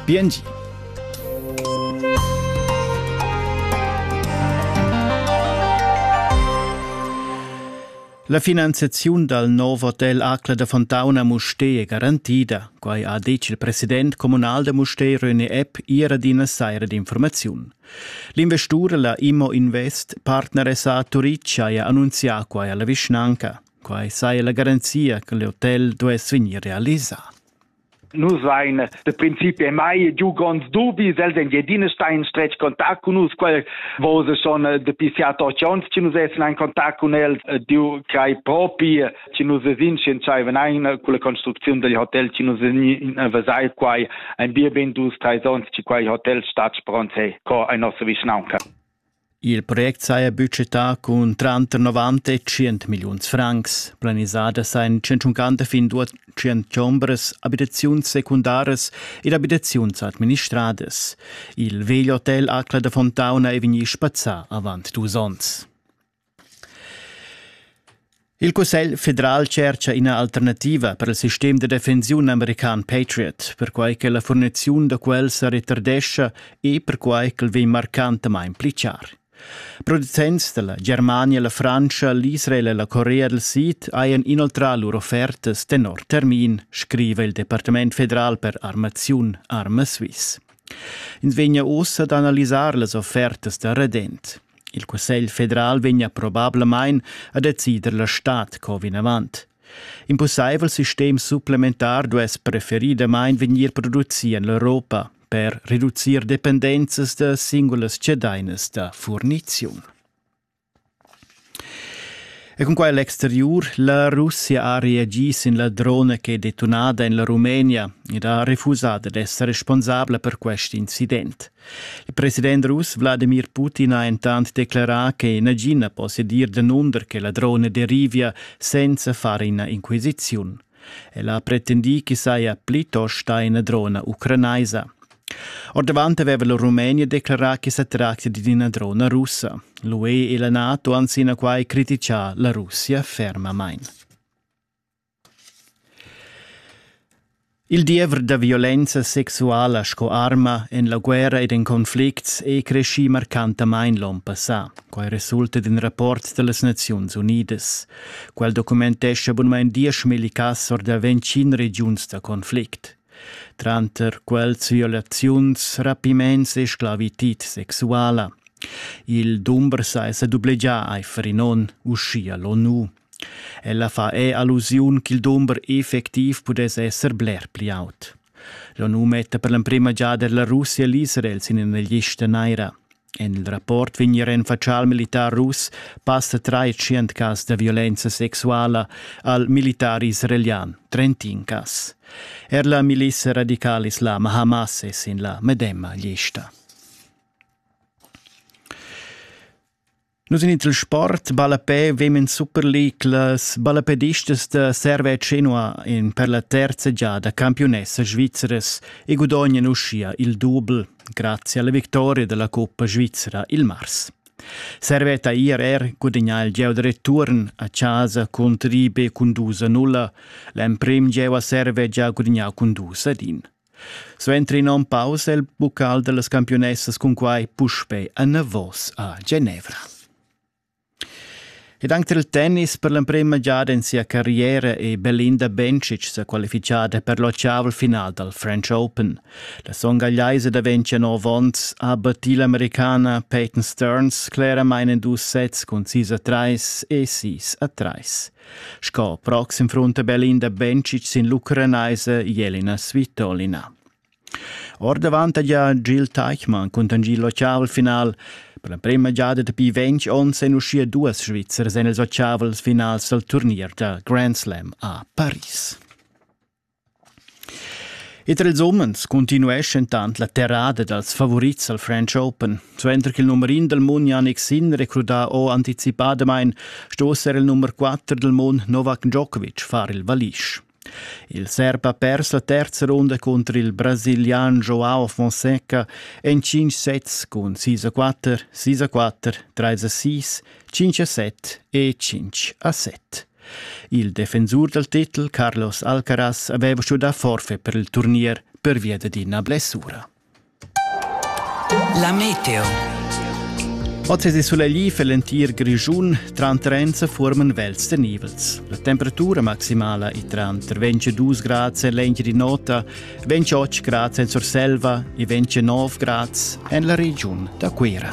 Biengi. La finanziaziun dal nov hotel Acla da Fontauna Musté è garantida. Quai ha detg il president communal da Musté René Epp ier ad ina saira d'informaziun. L'investur, la Immo Invest, partneressa a Turic, ha annunzià quai alla vischnanca. Quai saja la garanzia che l'hotel duess vegnir realisà. Nus ein da principi mai giu gronds dubis, els Engiadina stan in stretg contact cun nus, quel vos schon dapi siat ocht ons che nus essen in contact cun els, Diu crei propi, che nus esin scientscheiven ein con la construcziun dil hotel che nus esin vesai quai ein bien ben dus treis ons che quei hotel stat spronts he co ein nossa vischnaunca. Il project saja budgetà cun tranter 90 e 100 milliuns francs. Planisada sajan 150 fin 200 chombras, abitaziuns secundaras ed abitaziuns administradas. Il vegl hotel Acla da Fontauna è vegnì spazzà avant dus onns. Il Cussegl federal tschercha ina alternativa per il sistem da defensiun american Patriot, perquai che la furniziun da quel sa retardescha e perquai ch'el vegn marcantamain pli char. Producents dalla Germania, la Frantscha, l'Israel e la Corea del Sid hajan inoltrà lur offertas tenor termin, scriva il Departament federal per armaziun Arma Swiss. Ins vegna uss ad analisar las offertas da redent. Il Cussegl federal vegnia probablamain a decider la stad co vinavant. In pussaivel sistem supplementar duess preferidamain vegnir producì en l'Europa per reducir dependenzas da singulas cedainas da furniziun. E cun quai l'exteriur, la Russia ha reagì sin la drona che è detunada en la Rumenia ed ha refusà d'essere responsabla per quest incident. Il president russ Vladimir Putin ha entant declerà che nagin na possedir danunder che la drona derivia senza far ina inquisiziun. El ha pretendì ch'i saja plitost ina drona ucranaisa. Ordavant aveva la Rumenia declarà che sa tractia di una drona russa. L'UE e la NATO han sinaquai criticà la Russia fermamain. Il diever da violenza sexuala sco arma en la guerra ed en conflicts è creschì marcantamain l'onn passà. Quai resulta d'in rapport da las Naziuns Unidas. Quel documentescha bunamain dieschmilli cass or da ventgin regiuns da conflict. Tranter quels violaziuns, rapiments e sclavitid sexuala. Il dumber sa è sa dublegià aifer in onn, uschia l'ONU. Ella fa er allusiun ch'il dumber effectiv pudess esser bler pli aut. Jau nu metta per l'emprima giada la Russia l'Israel sin ina lista naira. En il rapport vegn er en fatschà al militar russ passa trais cas da violenza sexuala al militar israelian, trentin cas. Er la milissa radicala islama Hamas è sin la medemma lista. Nus in il sport ballapè vemen Superliglas ballapedistas da Serve Cenua in per la terza giada campiunessa svizras e gudognan uschia il dubel grazie alla vittoria della Coppa Svizzera il mars. Serveta IRR gudagnà il gieu da return a casa contro Ribe Condusa 0. L'emprim gieu a Serve già gudagnà Condusa din. Suenter in onn pausa il buccal dallas campiunessas cunquai puspei anavos a Genevra. Ed anche il tennis per l'emprema giada in sia carriera e Belinda Bencic sa qualifichada per l'ottaval final dal French Open. La songagliaisa da 29 onns ha battit l'americana Peyton Stearns claramente in dus sets cun 6 a 3 e 6 a 3. Sco proxim frunta Berlin da Bencic sin l'ucranaise Jelena Svitolina. Ordavant ha gia Gil Teichmann contangiert l'oceavelfinal. Per la prima giada dapi 20 onns èn uschia duas Svizzers en ils oceavels finals dal turnier da Grand Slam a Paris. E tra ils umens continueschentant la terrada dals favurits al French Open. Suenter ch'il numer in dal mund Yannick Sinner è crudà o anticipadamain, sto esser il numer 4 dal mund Novak Djokovic far il valisch. Il serb ha pers la terza runda contro il brasilian Joao Fonseca en 5 sets cun 6-4, 6-4, 3-6, 5-7 e 5-7. Il defensur dal titel Carlos Alcaraz aveva stuì forfait per il turnier pervia dad ina blessura. La meteo. Oz è sulegli per l'entir Grischun, tranter Enza forman vels de nivels. La temperatura maximala è tranter 22 grad e l'engi di nota, 28 grad en Surselva e 29 grad en la regiun da Cuira.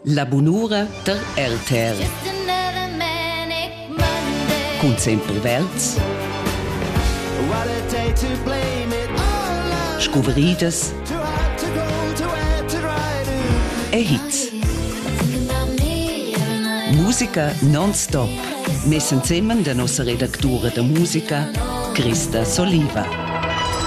La bunura tar RTR. Cun sempre verds. Scuvridas e hits. Musica non-stop, messen zemen der nossa Redaktura de Musica, Christa Soliva.